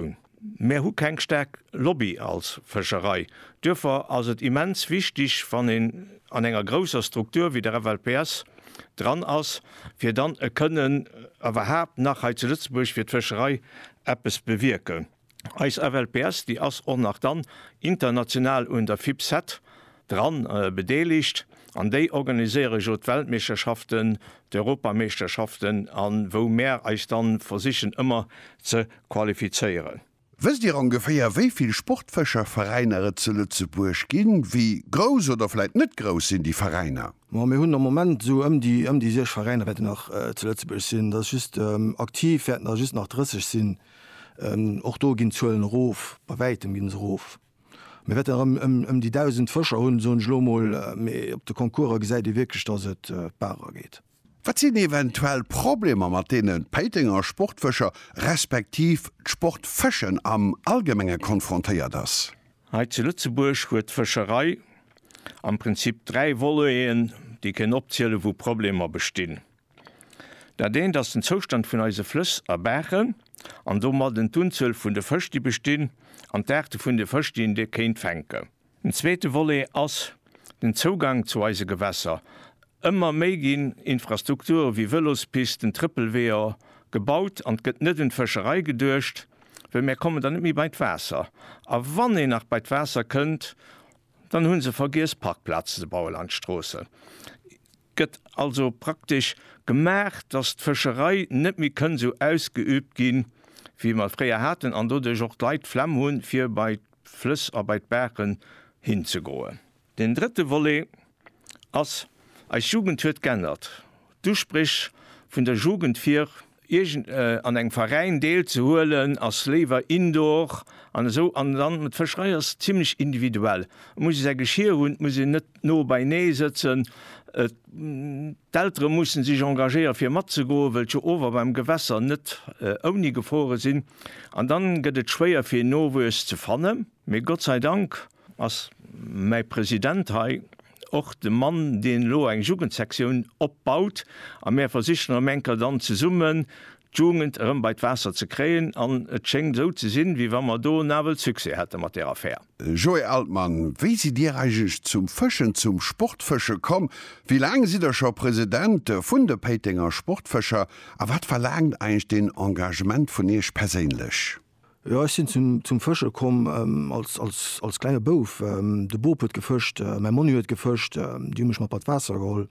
un. Mär hu keng staark Lobby als Fëscherei. Duerfir ass et immens wichtig, wann een an enger grousser Struktur wéi der FLPS dran ass, fir dann e kënnen iwwerhaapt nach hei zu Lëtzebuerg fir d'Fëscherei eppes bewierken. Eis FLPS, déi ass och nach dann international un der FIPSET Dran bedeelegt an déi organiséiere jo d'Weltmeeschterschaften, d'Europameeschterschaften a wou mär eis dann versichen ëmmer ze qualifizéieren. Wësst Dir ongeféier wéi vill Sportfëscherveräiner et zu Lëtzebuerg ginn? Wéi grouss oder vläit net grouss sinn déi Veräiner? Ma mir hunn am Moment esou ëm déi ëm déi 6 Veräiner wäerten nach zu Lëtzebuerg sinn. Dat ass just aktiv wäerten der just nach 30 sinn. Och do ginn d'Zuelen erof, bei wäitem ginn se erof. Mir wäerten erëm ëm déi 1.000 Fëscher hunn, soen ech elo emol, mee op de Concourse gesäit ee wierklech, datt et barer geet. Wat sinn eventuell Problemer, mat deenen d'Péitenger Sportfëscher respektiv d'Sportfëschen am Allgemenge konfrontéiert ass? Hei zu Lëtzebuerg huet d'Fëscherei am Prinzip dräi Voleten, déi kënnen opzielen, wou Problemer bestinn. Dat eent ass den Zoustand vun eise Flëss a Baachen an domadden d'Unzuel vun de Fësch, déi bestinn an d'Aarte vun de Fësch, déi een do kéint fänken. Den zweete Volet ass den Zougang zu eise Gewässer. Ëmmer méi ginn Infrastrukture wéi Vëlospisten, Trëppelweeër gebaut an et gëtt net un d'Fëscherei geduecht, well mär kommen dann net méi bei d'Waasser. A wann een nach bei d'Waasser kënnt, dann hu se vergiess Parkplazen ze baue lanscht d'Stroossen. gëtt also praktesch gemaach, dass d'Fëscherei net méi kënn esou ausgeübt gi wéi mer et fréier haten an doduerch och d'Leit d'Flemm hu fir bei d'Flëss a bei d'Baachen hinzegoen. Deen drëtte Volet ass, Eis Jugend huet g'ännert. D'Uspréch vun der Jugend fir. Iergend an engem Veräin deel ze huelen ass léiwer indoor an esou. An dann d'Fëscherei ass zimlech individuell. Et muss ee säi Geschir hunn, et muss een net no beinee sëtzen. D'Eltere mussen sech engagéiere fir matzegoen, wëll d'Ower beim Gewässer net ouni gefrore sinn. An dann gëtt et schwéier fir en Nowuess ze fannen. Mee Gott sei Dank Ass mäi President hei och de Mann, deen elo eng Jugendsektioun opbaut a mär versichen erëm eng Kéier dann zesummen d'Jugend erëm bei d'Waasser ze kréien an et schéngt esou ze sinn, wéi wa mer do nawell Succès hätte mat där Affär. Joé Altmann, Wéi sidd Dir eigentlech zum Fëschen, zum Sportfësche komm? Wéi laang sidd Der scho President vun de Péitenger Sportfëscher a wat verlaangt eigentlech den Engagement vun Iech perséinlech? Jo, ech sinn zum Fësche komm als klenge Bouf. De Bop huet gefëscht, mäi Monni huet gefëscht, déi hu mech mat bei d'Waasser geholl.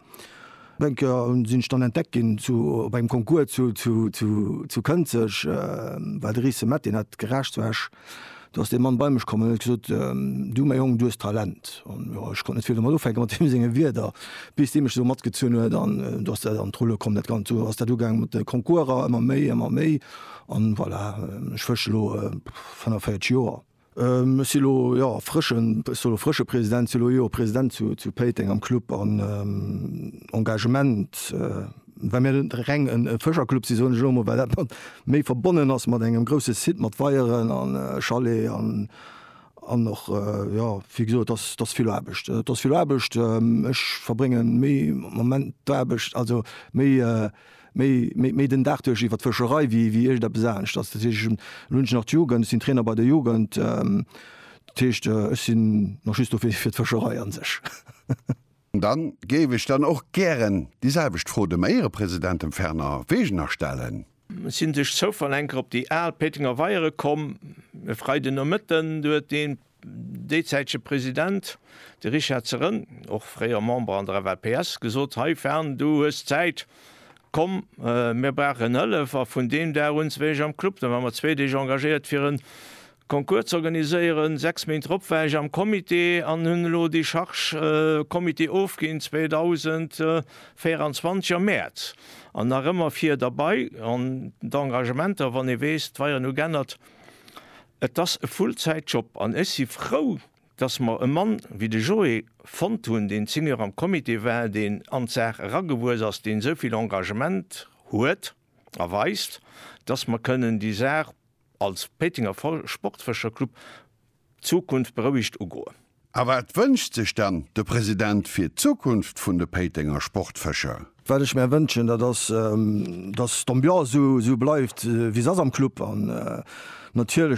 Eng Kéier sinn ech dann entdeckt ginn op engem Concours zu Kënzeg, well de Rice Mett, deen hat geraascht zu Esch. Do ass dee Mann bei mech komm an huet gesot, Du, mäi Jong, du hues Talent. An jo, ech konnt net vill domat ufänke mat deem senge Wierder, bis dee mech esou matgezunn huet an do ass dat an d'Rulle komm dat Ganzt. Esou ass dat ugaang mat de Concourser, ëmmer méi, ëmmer méi. An voilà, ech fësche elo 45 Joer. Ech si elo, jo, frëschen, ech soll elo frësche President, si elo, jo, President zu, zu Péiteng am Club. An Engagement, well mir net reng e Fëscherclub sinn, soen ech elo emol, well dat mat, méi verbonnen ass mat engem grousse Site mat Weieren a Chalet an, an och, jo, wéi gesot, et ass, et ass vill Aarbecht. Et ass vill Aarbecht. Ech verbréngen méi am Moment d'Aarbecht, also méi, méi méi den Dag duerch iwwert d'Fëscherei wéi wéi iergendeppes anescht. Dat heescht, ech hunn, elo hunn ech nach d'Jugend, ech sinn Trainer bei der Jugend, dat heescht, ech sinn nach just do fir fir d'Fëscherei a sech. Da géif ech dann och gären déi selwecht Fro dem Éierepresident, dem Fernand Wegener, stellen. Ech sinn duerch Zoufall enker op déi al Péitenger Weiere komm e Freidenomëtten. Do huet ee déizäitege President, de Richard Zerrënn, och fréier Member an der FLPS, gesot, Hei Fern, du hues Zäit, komm, mir brauchen Hëllef. A vun deem Dag un wéi ech am Club, da war mer zwee Deeg engagéiert fir e Concours ze organiséieren, sechs Méint drop war ech am Comité an hunn elo déi Charge Comité ofginn 2024 am Mäerz an nach ëmmer vir derbai. An d'Engagementer, wann ee weess, d'Weieren hu g'ännert, Et ass e Full-Zäit-Job an ech si frou, dass mer e Mann wéi de Joé fonnt hunn, deen Senior am Comité war, deen an d'Saach eragewuess ass, deen esou vill Engagement huet a weist, dass mer kënnen déi Saach als Péitenger Sportfëscherclub d'Zukunft berouegt ugoen. A wat wënscht sech dann de President fir d'Zukunft vun de Péitenger Sportfëscher? Wat ech mär wënschen, dat ass, dass d'Ambiance esou bleift wéi se ass am Club an natierlech